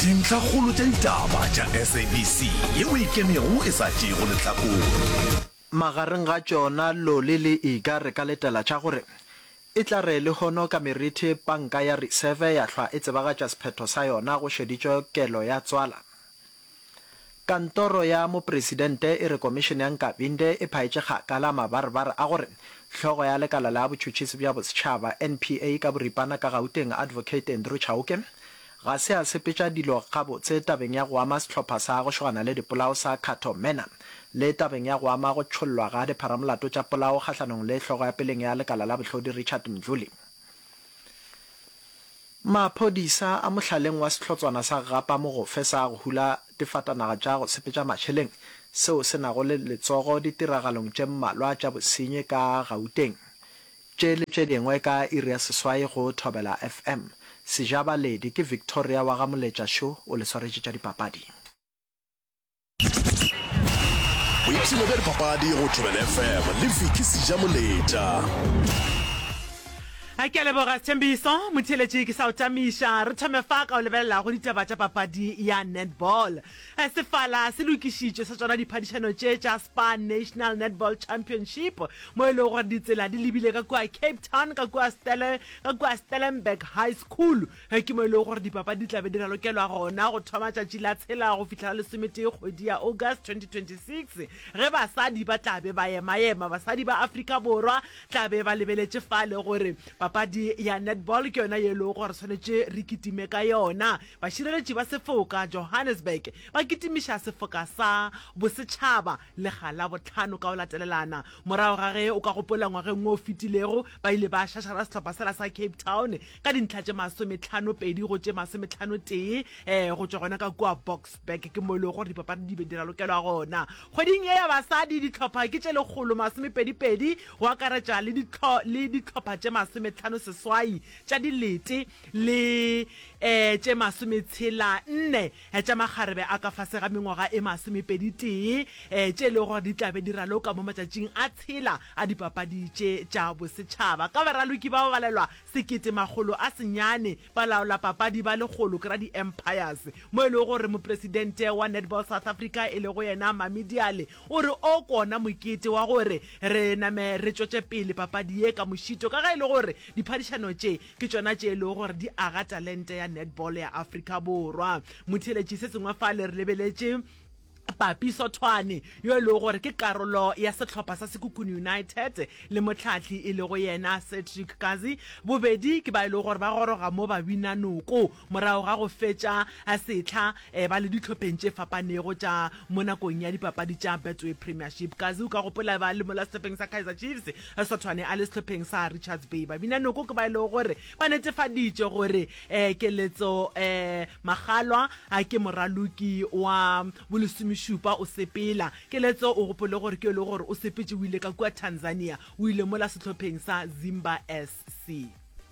Dintlhakgolo tša ditaba tša SABC ye o e kenego e sa tšeego lehlakore. Magareng ga tšona loli le ika re ka letela tša gore, E tla re lehono ka merithe panka ya reserve ya hlwa e tsebagatša sephetho sa yona go šeditšwe kelo ya tswala. Kantoro ya Mopresidente e re Komišene ya Nkabinde e phaetše kgakala mabarebare a gore hlogo ya lekala la botšhutšhisi bja bosetšhaba, NPA, ka boripana ka Gauteng, Advocate Andrew Chauke, Ga se a sepetša dilo gabotse tabeng ya go ama sehlopha sa go šogana le dipolao sa Cato Mena le tabeng ya go ama go tšhollwa ga dipharamolato tša polao kgahlanong le hlogo ya peleng ya lekala la bohlodi Richard Mdluli. Maphodisa a mohlaleng wa sehlotswana sa Gapa Mogofe sa go hula difatanaga tša go sepetša mašeleng seo se nago le letsogo ditiragalong tše mmalwa tša bosenyi ka Gauteng Tše le tše dingwe ka iri ya seswai go Thobela FM. Sejabaledi ke Victoria wa ga Moletša Šo o le swaretše tša dipapadi. Boipshino bja dipapadi go Thobela FM le Vicky Sejamoletša. A ke a leboga Sethembiso motheeletši ke sa o tamiša re thome fa ka o lebelelago ditaba tša papadi ya netball. Sefala se lokišitšwe sa tšona diphadišano tše tša Spar National Netball Championship mo e lego gore ditsela di lebile ka kua Cape Town ka kua ka kua Stellenberg High School ke mo e lego gore dipapadi di tla be di ralokelwa gona go thoma tšatši la tshela go fihla la lesometee kgwedi ya August 2026 ge basadi ba tla be ba ema-ema. Basadi ba Afrika Borwa tla be ba lebeletše fale gore papadi ya netball ke yona ye e lego gore swanetše re kitime ka yona Bašireletši ba Sefoka Johannesburg ba kitimiša sefoka sa bosetšhaba lega la bohlano ka go latelelana morago ga ge o ka gopola ngwageng wo o fetilego ba ile ba šašara sehlopha sela sa Cape Town ka dintlha tše masometlhano pedi go tše masometlhano tee go tšwa gona ka kua Boksburg ke mo e lego gore dipapadi di be di ralokelwa gona. Kgweding ye ya basadi dihlopha ke tše lekgolo masomepedi pedi go akaretša le dihlopha tše masometlhano seswai tša dilete. le um tše masometshela nne tša makgarebe a ka fase ga mengwaga e masomepedi-tee, um tše e lego gore di tla be di raloka mo matšatšing a tshela a Dipapadi tše tša Bosetšhaba. Ka baraloki ba babalelwa sekete makgolo a senyane, balaolapapadi ba lekgolo ke Radi-Empires, mo e lego gore mopresidente wa Netball South Africa e lego yena Mami Diale o re o ko ona mokete wa gore re name re tšwetše pele papadi ye ka mošito ka ge e le gore diphadišano tše Ke tšona tše e lego gore di aga talente ya netball ya Afrika Borwa. Motheeletši se sengwe fale re lebeletše Papi Sothwane yo e lego gore ke karolo ya sehlopha sa Sekhukhune United le mohlahli e lego yena Cedric Kazi. Bobedi ke ba e lego gore ba goroga mo ba bina noko morago ga go fetša sehla Eba le dihlopheng tše fapanego tša mo nakong ya dipapadi tša Betway Premiership. Kazi o ka gopola ba le mola sehlopheng sa Kaizer Chiefs, Sothwane a le sehlopheng sa Richards Bay. Babinanoko ke ba e lego gore ba netefaditše gore Keletso Magalwa ke moraloki wa bolesomešupa o sepela. Keletso o gopole gore ke yo e lego gore o sepetše o ile ka kua Tanzania, o ile mola sehlopheng sa Zimba SC.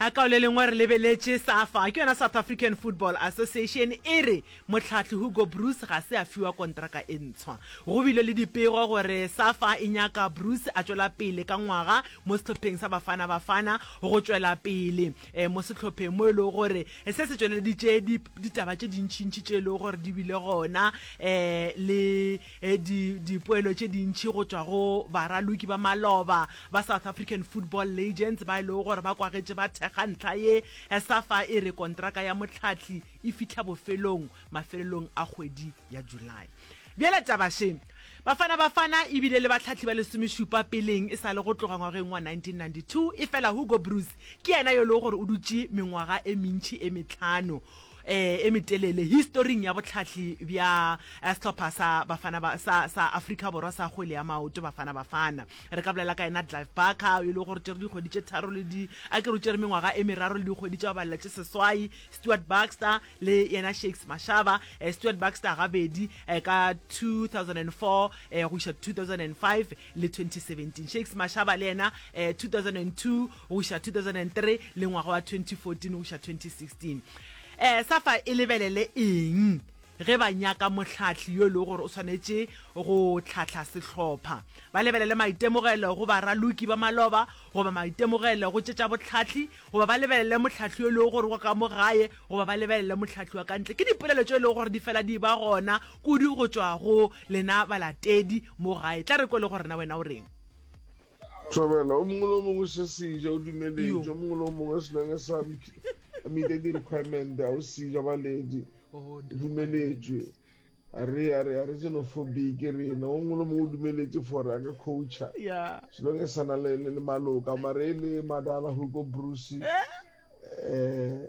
A Ka le lengwe re lebeletše Safa, ke yona South African Football Association, e re mohlahli Hugo Broos ga se a fiwa kontraka e ntshwa. Go bile le dipego gore Safa e nyaka Broos a tšwela pele ka ngwaga mo sehlopheng sa Bafana Bafana go tšwela pele mo sehlopheng mo e lego gore se se tšweleditše ditaba tše dintšintši tše e lego gore di bile gona le di dipoelo tše dintši go tšwa go baraloki ba maloba ba South African Football Legends ba e lego gore ba kwagetše ba thekga ntlha ye, Safa e re kontraka ya Motlhathli e fihla bofelong mafelelong a kgwedi ya July. Bjale taba še, Bafana Bafana e bile le batlhathli ba lesomešupa peleng e sa le go tloga ngwageng wa 1992, efela Hugo Broos ke yena yo e lego gore o dutše mengwaga e mentši e mehlano eh e metelele historing ya botlhahli bja eh, sehlopha sa bafana ba, sa, sa afrika borwa sa kgwele ya maoto bafana bafana re ka bolela ka ena clive barker e le gore tšere dikgwedi tše tharo le di a ke re o tšere mengwaga e meraro le dikgwedi tša balela tše seswai stewart baxter le yena shakes mashaba eh, stewart baxter gabedi eh, ka 2004 eh, go iša 2005 le 2017 shakes mashaba le yena eh, 2002 go iša 2003 le ngwaga wa 2014 go iša 2016. Um sa fa e lebelele eng ge ba nyaka mohlahli yo e lego gore o swanetše go hlahla sehlopha? Ba lebelele maitemogelo go baraloki ba maloba goba maitemogelo go tše tša bohlahli goba ba lebelele mohlahli yo e lego gore wa ka mo gae goba ba lebelele mohlahli wa ka ntle? Ke dipolelo tšeo e lego gore di fela di ba gona kudu go tšwa go lena balatedi mo gae. Tla re kwele gore na wena o reng. Thobela, o mongwe le o mongwe se seja o dumeletše, o mongwe le o mongwe se nang sa mite di requirement a o seja baledi o dumeletšwe a re a re a re tseno fo beke rena o mongwe le mongwe o dumeletše for a ka coacha selo ke sana le le maloka mare e le madala hugo bruce eh, eh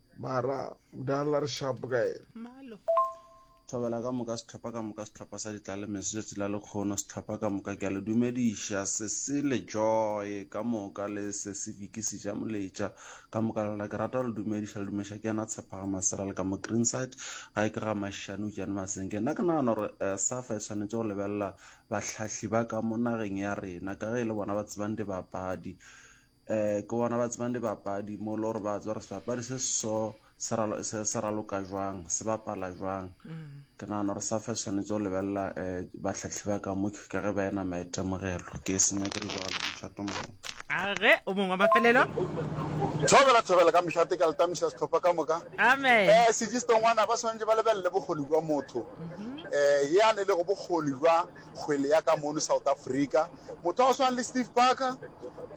Mara mdala re sharp ka yena. Thobela ka moka sehlopha ka moka sehlopha sa ditlalemeso tšatši la lekgono sehlopha ka moka ke a le dumediša sesi le joy ka moka le sesi viki seja moletša ka moka lona ke rata go le dumediša le dumeša ke yena tshepaga masera le ka mo greenside ga e ke ga mašane utšane masenge nna ke nagana gore eh, safa e tshwanetse go lebelela bahlahli ba ka mo nageng ya rena ka ge e le bona ba tsebang dibapadi um ke bona ba tsebang dibapadi mo le gore ba tswa gore sebapadi se so se raloka jwang se bapala jwang ke nagana gore safa e tshwanetse go lebelela um batlhatlhi ba ka mo ka ge ba ena maitemogelo ke e senya ke dijalo mošato mongwe age o mongwe wa mafelelo thobela thobela ka mošate ka letamiša setlhopha ka moka amen um sejistongwana ba tshwanetse ba lebelele bokgoni jwa motho um mhm. eh, ye a ne le go bokgoni jwa kgwele ya ka mono South Africa. Motho wa go swana le Steve Barker,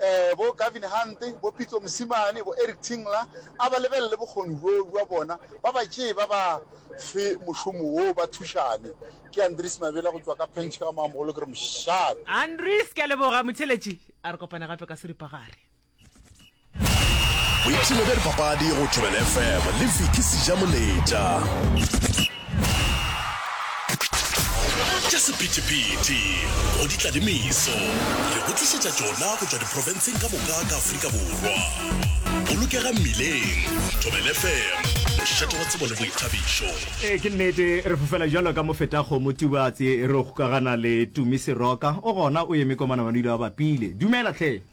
eh, bo Gavin Hunt, bo Pitso Mosimane, bo Eric Tinkler, a ba lebelele bokgoni bjo bja bona, ba ba tšee ba ba fe mošomo woo ba thušane. Ke Andries Mabela go tšwa ka Penchika ka Mamogolo, ke re mošate. Andries, ke a leboga. Motheletši, a re kopane gape ka seripagare. boipshino bja dipapadi go thobel fm le fiki sejamoletša tša sephetephete go ditladimiso re go tlišetša tšona go tšwa diprofenseng ka moka ka afrika borwa bolokega mmileng thobel fm mošate wa tsebo le boithabišo ee ke nnete re fofela jalo ka mofetago motubatse re go kagana le tumise roka o gona o eme kwa manamanile wa bapile dumela tlhe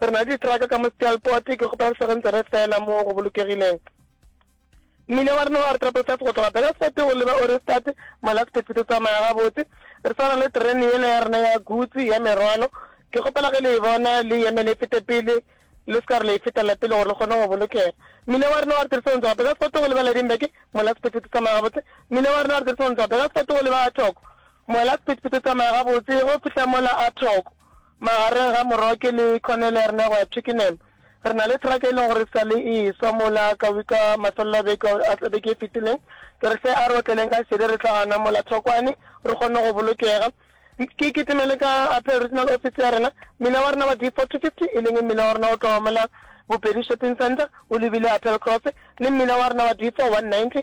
Re na le ditraka ka mo Stealport, ke kgopela re sego ntse re fela mo go bolokegileng. Mmila wa rena wa re Triple Five go tloga Belfast go leba Ohrigstad, Malakspet, o tsamaya gabotse. Re swara le terene yela ya rena ya guts, ya merwalo. Ke kgopela ge le e bona, le eme le fete pele, le se ka re le e fetela pele gore le kgone go bolokega. Mmila wa rena wa re Tiriso go tloga Belfast go leba Ladingberg, Malakspet, o tsamaya gabotse. Mmila wa rena wa re Tiriso go tloga Belfast go leba Athogo, Malakspet, o tsamaya gabotse ge o fihla mola Athogo. Magareng ga Moroke le Cornelerne go ya Twickenham, re na le traka e leng gore e sa le e e-swa mola ka wika mafelelo a beke a beke e fetileng. Ke re hle a re otleleng ka šedi re tla gana mola thokwane re kgonne go bolokega. Ke kitimele ka Apple Regional Office ya rena. Mmila wa rena wa D4-50, e leng mmila wa rena o tloga mola Bopedi Shopping Centre o lebile Apple Cross, le mmila wa rena wa D4-190,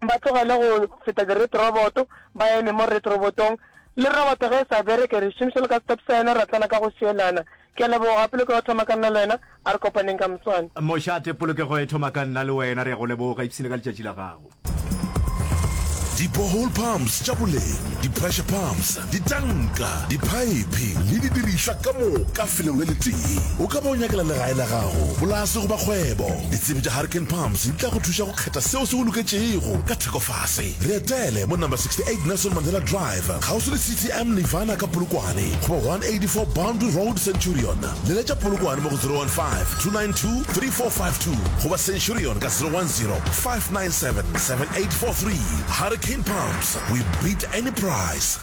Ba tlogele go feta di-red robot, ba eme mo red robotong. Le robot ge e sa bereke, re šomiša le ka stop sign, ra tlana ka go šielana. Ke a leboga, polokego e thoma ka nna le wena, a re kopaneng ka moswane. Mošate, polokego e thoma ka nna le wena, re a go leboga, ipshine ka letšatši la gago. Di-borehole pumps tša boleng, di-pressure pumps, ditanka, diphaephe le didirišwa ka moka felong le letee. O ka ba o nyakela legae la gago, polase goba kgwebo. Ditsebi tša Hurricane Pumps di tla go thuša go Phetha seo se go loketšego ka theko fase. Re etele mo Number 68 Nelson Mandela Drive, kgauswi le CTM Nirvana ka Polokwane, goba 184 Boundary Road, Centurion. Leletša Polokwane mo go 015-292-3452 goba Centurion ka 010-597-7843. Hurricane Pumps, we beat any price!